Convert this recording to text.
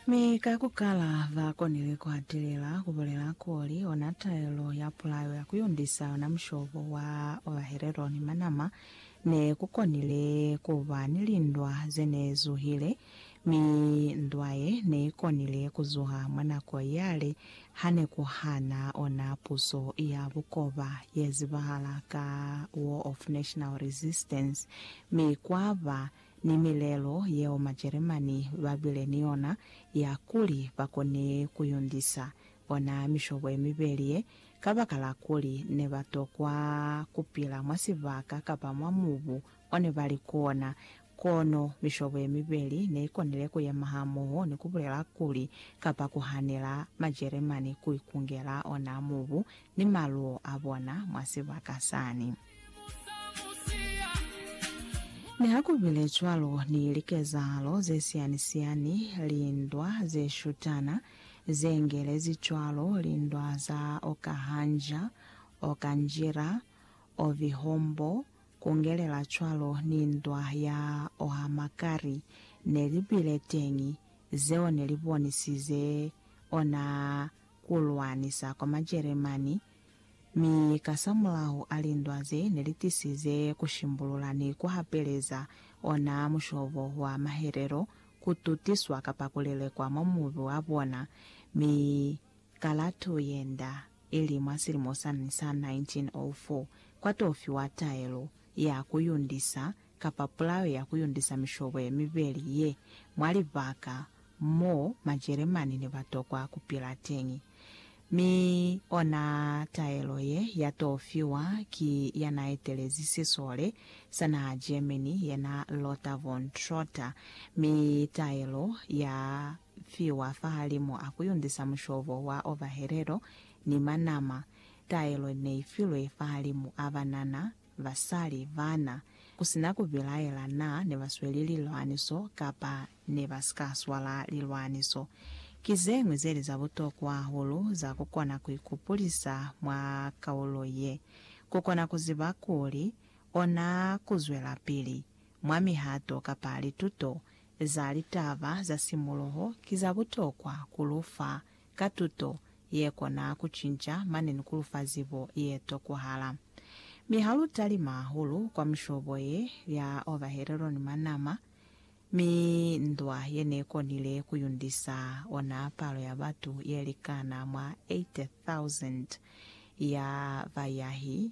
Mi ka ku kala, ba konile ku atelela ku bulela kuli ona taelo ya pulayo ya ku yundisa yona mushobo wa ovahelelo ni manama ne ku konile ku ba ni lindwa ze ne zuhile, mi ndwa ye ne i konile ku zuha mwa nako yale ha ne ku hana ona puso ya bukoba ye zibahala ka War of National Resistance, mi kwa ba ni milelo yeo Majeremani ba bile ni yona ya kuli ba kone ku yundisa ona mishobo ye mibeli ye, kabakala kuli ne ba tokwa ku pila mwa sibaka kapa mwa mubu o ne ba li kona. Kono mishobo ye mibeli ne i konile ku yema hamoho ni ku bulela kuli, kapa ku hanela, Majeremani ku ikungela ona mubu ni maluo a bona mwa sibaka sani. Nihakubile cwalo, ni likezahalo zesiyani-siyani, lindwa zeshutana, zeengelezi cwalo, lindwa za Okahanja, Okanjira, Ovihombo, kungelela cwalo ni ndwa ya Ohamakari, nelibile teñi, zeo nelibonisize ona kulwanisa kwa Majeremani Mi kasamulaho a lindwa ze ne li tisize ku shimbulula ni ku hapeleza ona mushobo wa mahelelo, ku tutiswa kapa ku lelekwa mwa mubi wa bona, mi kalatu ye nda, ili mwa silimo sani sa 1904, kwa to fiwa taelo ya ku yundisa kapa pulao ya ku yundisa mishobo ye mibeli ye mwa libaka mo Majeremani ne ba tokwa ku pila teñi. Mi ona taelo ye ya t'o fiwa ki ya n'a etelezi sisole sa naha Germany ye n'a Lothar von Trotter, mi taelo ya fiwa fahalimu a ku yundisa mushobo wa ovahelelo ni manama. Taelo n'e i filwe fahalimu a banana basali, bana, ku si na ku bilaela na ne ba sweli lilwaniso kapa ne ba si ka swala lilwaniso, ki ze ñwi ze li za butokwa hahulu za ku kona ku ikupulisa mwa kaulo ye, ku kona ku ziba kuli ona ku zwelapili mwa mihato kapa lituto za litaba za simuluho ki za butokwa ku lu fa ka tuto ye kona ku cinca mane ni ku lufa zibo ye tokwahala. Mi ha lu talima hahulu kwa mishobo ye lya ovahelelo ni manama, mi ndwa ye ne konile ku yundisa ona palo ya batu ye likana mwa 80,000 ya bayahi